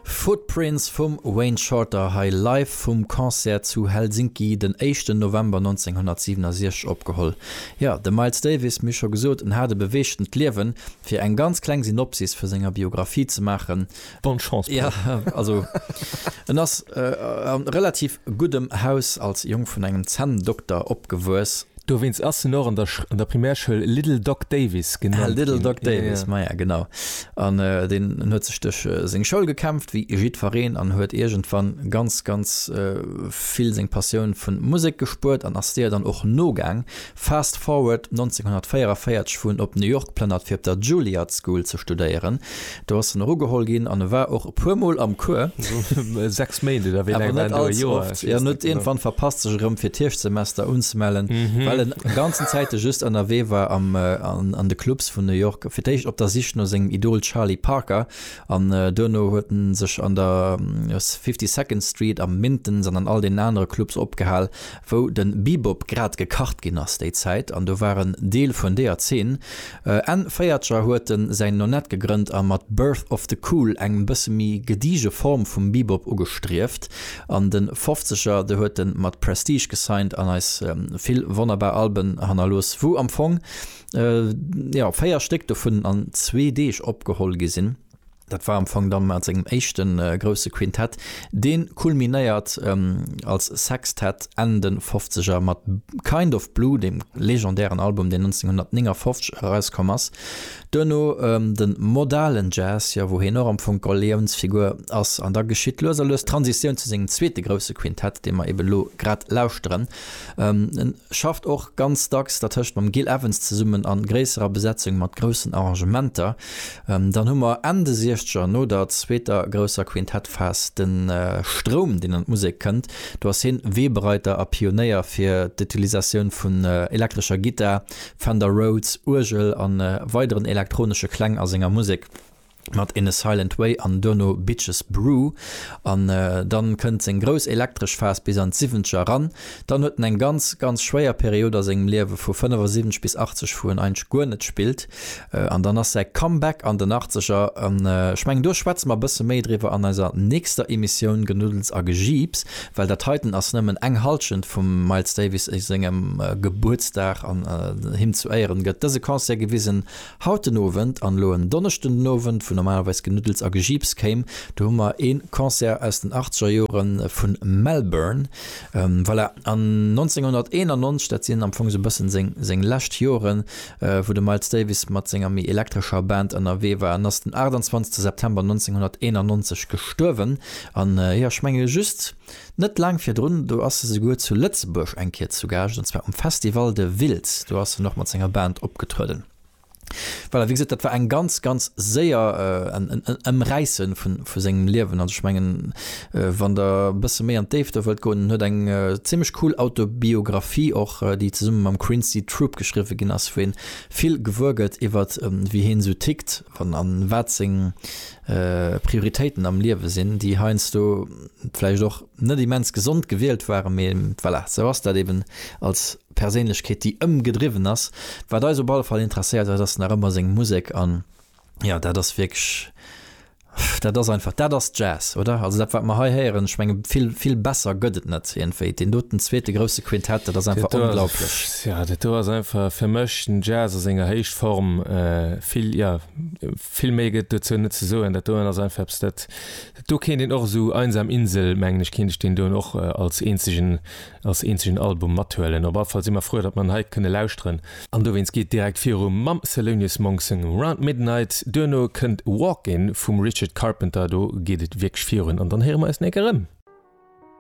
Footprints vum Wayne Shorter hei live vum Concert zu Helsinki den éischten November 1967 opgeholl. Jo, de Miles Davis, mir scho gesot, en hat e beweegtent Liewen. Fir eng ganz kleng Synopsis vu senger Biographie ze maachen. Bonne chance, Paul. Jo, also en ass a relativ guddem Haus als Jong vun engem Zänndokter opgewuess. Dowéinst ass en och an der Primärschoul Little Doc Davis genannt ginn. Little Doc Davis, maja genau. An deen huet sech duerch seng Schoul gekämpft, wéi jiddfereen, an huet iergendwann ganz, ganz vill seng Passioun vun Musek gespuert an ass deeër dann och nogaang. Fast forward, 1944 fuer en op New York plënnert fir op der Juilliard School ze studéieren, Do ass en och ugeholl ginn an e war och e puermol am Cours. Esou 6 Méint oder wéi laang war en do? E Joer? Ech weess net genau. An huet iergendwann verpasst sech erëm fir d'Hierschtsemester unzemellen, well en ganzen Zäite just ënnerwee war am an de Clubs vun New York, fir d'éischt op der Sich no sengem Idol Charlie Parker an duerno huet en sech an der Fifty Second Street, am Minton's an an all deenen anere Clubs opgehal, wou den Bebop grad gekacht gin ass déi Zäit an do war en Deel vun deeër Zeen. Enn Véiertscher huet en säin Nonet gegrënnt a mat Birth of the Cool eng bësse méi gediege Form vum Bebop ugestrieft. An den Fofzeger do huet en mat Prestige gesigned an eis vill wonnerbar Alben hannerlooss, wou am Fong jo 4 Stéck dovun an zwee Deeg opgeholl gi sin. Dat war am Fong dann mat sengem éischte grousse Quintett. Dee kulminéiert als Sextett Enn de Fofzeger mat Kind of Blue, deem legendären Album, deen 1959 erauskomm ass. Duerno de modalen Jazz, jo, wou hien och am Fong d'Galiounsfigur ass. An da geschitt lues a lues d'Transitioun zu sengem zweete grousse Quintett, dee mer eeben elo grad lauschteren. Schafft och ganz dacks dertëscht mam Gil Evans zesummen a gréisserer Besetzung mat groussen Arrangementer. Dann hu mer Enn de Siechzeger, no der zweeter grousser Quintettphas, de Stroum, deen an d'Musek kënnt. Do ass hien Weebereiter a Pionéier fir d'Utilisatioun vun elektrescher Gittar, Fender Rhodes Uergel a weideren elektronesche Kläng a senger Musek. mat In a Silent Way an duerno Bitches Brew an dann kënnt seng grouss elektresch Phas bis an d'Siwwentger eran. Dann huet en eng ganz ganz schwéier Period a sengem Liewe vu 75 bis 80 wou en eigentlech guer net spillt an dann ass säi Comeback an den Achtzeger an ech mengen do schwätze mer e bësse méi driwwer an eiser nächster Emissioun Genuddels a Gejiips well dat heiten ass nëmmen eng Halschent vum Miles Davis sengem Gebuertsdag an him zu Éieren gëtt dëse Concert gewisen. Haut den Owend, an elo en Donneschden den Owend, wou normalerweis Genuddels a Gejiips kéim, do hu mer ee Concert aus den achtzeger Jore vu Melbourne. Voilà, an 1991, dat sinn am Fong esou e bëssen seng, seng lescht Joren, wou de Miles Davis mat senger méi elektrescher Band ënnerwee war, en ass den 28 September 1991 gestuerwen. An jo, ech menge just. Net laang virdrun, do ass se souguer zu Lëtzebuerg eng Kéier zu Gaascht, an zwar um Festival de Wiltz, do ass en och mat senger Band opgetrueden. Voilà, wéi gesot, dat war eng ganz, ganz séier, en Ëmräisse vu sengem Liewen. Also ech mengen, wann der e bësse méi an d'Déift do wëllt goen, en huet eng zimmlech cool Autobiographie och, déi zesumme mam Quincy Troupe geschriwwe ginn ass, wou ee vill gewuer gëtt iwwert wéi hien esou tickt an wat seng, Prioritéiten am Liewe sinn, déi heiansdo vläicht och net immens gesond gewielt waren, mee voilà, esou ass dat eeben als Perséinlechkeet, déi ëmgedriwwen ass. Wat eis op alle Fall interesséiert huet, ass nach ëmmer seng Musek an jo, dat ass wierklech, dat ass einfach, dat ass Jazz, oder? Also dat, wat mer hei héieren, ech menge vill, vill besser gëtt et net iergendwéi. Deen doten zweete grousse Quintett, dat ass einfach onglaublech. Dat do ass einfach fir mech den Jazz a senger Héichform, vill, jo. Vill méi gëtt dozou net ze soen. Dat doen ass einfach eppes, dat, do kéint een och esou Einsam Insel, mengen ech, kéint ech deen doen och als eenzegen, als eenzegen Album mathuelen. Op alle Fall si mer frou, datt mer en hei kënne lauschteren. An dowéinst geet direkt viru mam Thelonious Monk sengem Round Midnight. Duerno kënnt Walk In vum Richard Carpenter. Do geet et wierklech virun an dann héiere mer eis néng erëm.